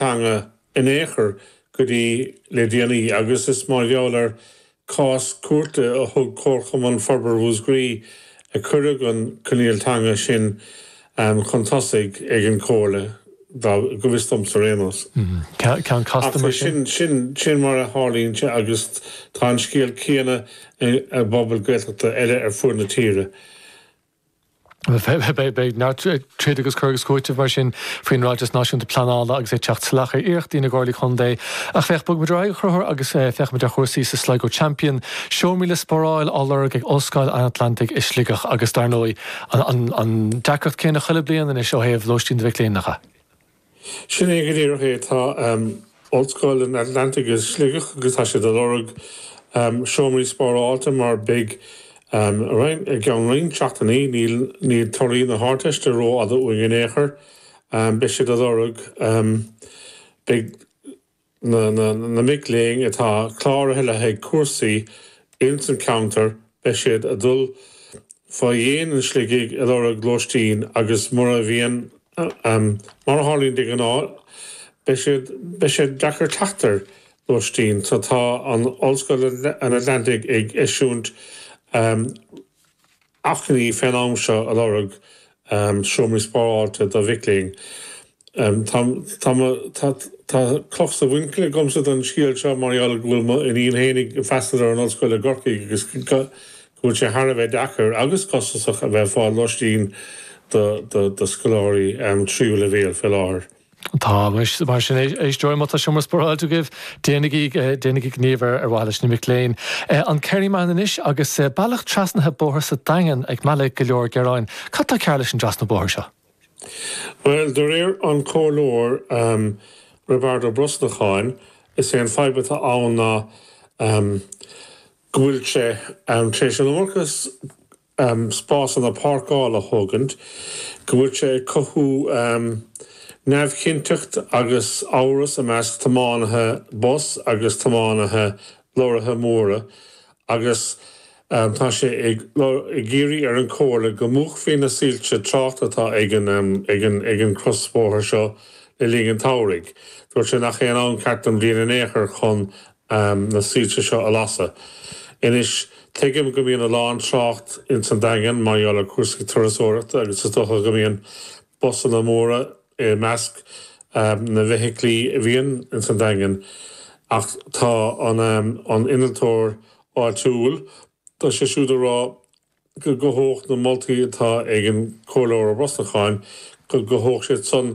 teanga in aon chor go dtí le déanaí agus is mar gheall ar chás cúirte a thug Comharchumann Forbartha Mhúscraí a cuireadh an coinníoll teanga sin chun tosaigh ag an Chomhairle, go bhfios domhsa ar aon nós. Ceann casta mar sin. Ach sin sin mar a tharlaíonn sé agus tá an scéal céanna i bpobail Gaeltachta eile ar fuaid na tíre. Beidh neart troid agus cur agus cúiteamh mar sin faoin Ráiteas Náisiúnta Pleanála agus é ag teacht salach ar iarrachtaí na gComhairlí Contae. Ach féach, bogaimid ar aghaidh, a Chonchúir, agus féachaimid ar chúrsaí sa Sligo Champion. Seomraí le spáráil á lorg ag Ollscoil an Atlantaigh i Sligeach agus dar ndóigh an deacracht céanna chuile bliain anois ó thaobh lóistín do mhic léinn. Sin é go díreach é. Tá Ollscoil an Atlantaigh i Sligeach agus tá siad a lorg seomraí spárálta mar beidh roinnt, i gceann roinnt seachtainí, níl torthaí na hArdteiste ró-fhada uainn in aon chor, beidh siad a lorg, beidh, Na mic léinn atá cláraithe le haghaidh cúrsaí ins an cheantar beidh siad a' dul fá dhéin an Sligigh a' lorg lóistín agus mura bhíonn, mar a tharlaíonn de ghnáth, beidh siad, beidh sé deacair teacht ar lóistín so tá an Ollscoil an Atlantaigh ag eisiúint achainí fén am seo a lorg seomraí spáráilte do mhic léinn. Tá cloch sa mhuinchille agamsa don scéal seo mar gheall go bhfuil m'iníon féin ag freastal ar an Ollscoil i gCorcaigh agus go bhfuil sé thar a bheith deacair agus costasach a bheith ag fáil lóistín do scoláirí tríú leibhéal fé láthair. Tá, mar sin, a éisteoirí, má tá seomra spáráilte agaibh, déanaigí, déanaigí gníomh ar mhaithe leis na mic léinn. An Kerryman anois agus bealach trasnaithe bóthair sa Daingean ag mealladh go leor gearáin. Cad tá cearr leis an dtrasnú bóthair seo? Bhuel, de réir an Chomhairleoir Roibeard Ó Brosnacháin, is é an fadhb atá ann ná go bhfuil sé tar éis an iomarca um spásanna páirceála a thógaint, go bhfuil sé ag cothú um neamhchinnteacht agus amhras i measc tiománaithe bus agus tiománaithe lorraithe móra agus um tá sé ag ag iarraidh ar an Chomhairle go múchfaí na soilse tráchta atá ag an um ag an ag an chrosbhóthar seo le linn an tsamhraidh. Dúirt sé nach é an am ceart den bhliain in aon chor chun am na soilse seo a lasadh. Anois, tuigim go mbíonn a lán trácht ins an Daingean mar gheall ar cúrsaí turasóireachta agus is dócha go mbíonn busanna móra i measc na bhfeithiclí a bhíonn ins an Daingean ach tá an innealtóir áitiúil tá sé siúd ag rá go gcothódh na moltaí atá ag an Comhairleoir Ó Brosnacháin go gcothódh siad san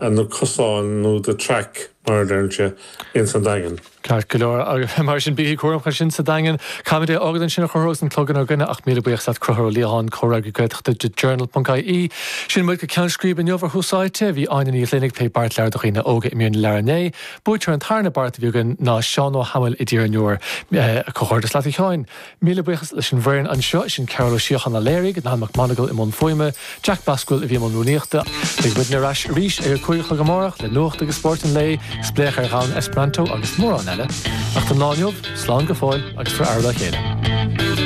ar na cosáin nó the track mar a deirtear ins an Daingean. Ceart go leor, agus mar sin bígí cúramach ansin sa Daingean. Caithfimid é fhágaint ansin a Choncubhair agus an clog inár gcoinne ach míle buíochas leat Concubhar Ó Liatháin, Comhfhreagraí Gaeltachta The Journal ponc IE. Sin muid go ceann scríbe inniu ar Thús Áite. Bhí Áine Ní Ghlinn ag plé Beart Leabhar do Dhaoine Óga i mír na leabhar inné. Buaiteoir an tarna beart a bhí againn ná Seán Ó hAdhmaill i dTír an Iúir. Comhghairdeas leat a Sheáin! Míle buíochas leis an bhfoireann anseo, sin Cearbhall Ó Síocháin a léirigh, Niall MacMonagle i mbun fuaime, Jack Basquel a bhí i mbun rúnaíochta. Beidh muidne ar ais arís ag a cúig a chlog amárach le nuacht agus spórt an lae, spléach ar dhomhan Esperanto agus mórán eile. Ach don lá inniu, slán go fóill agus tabhair aire dá chéile.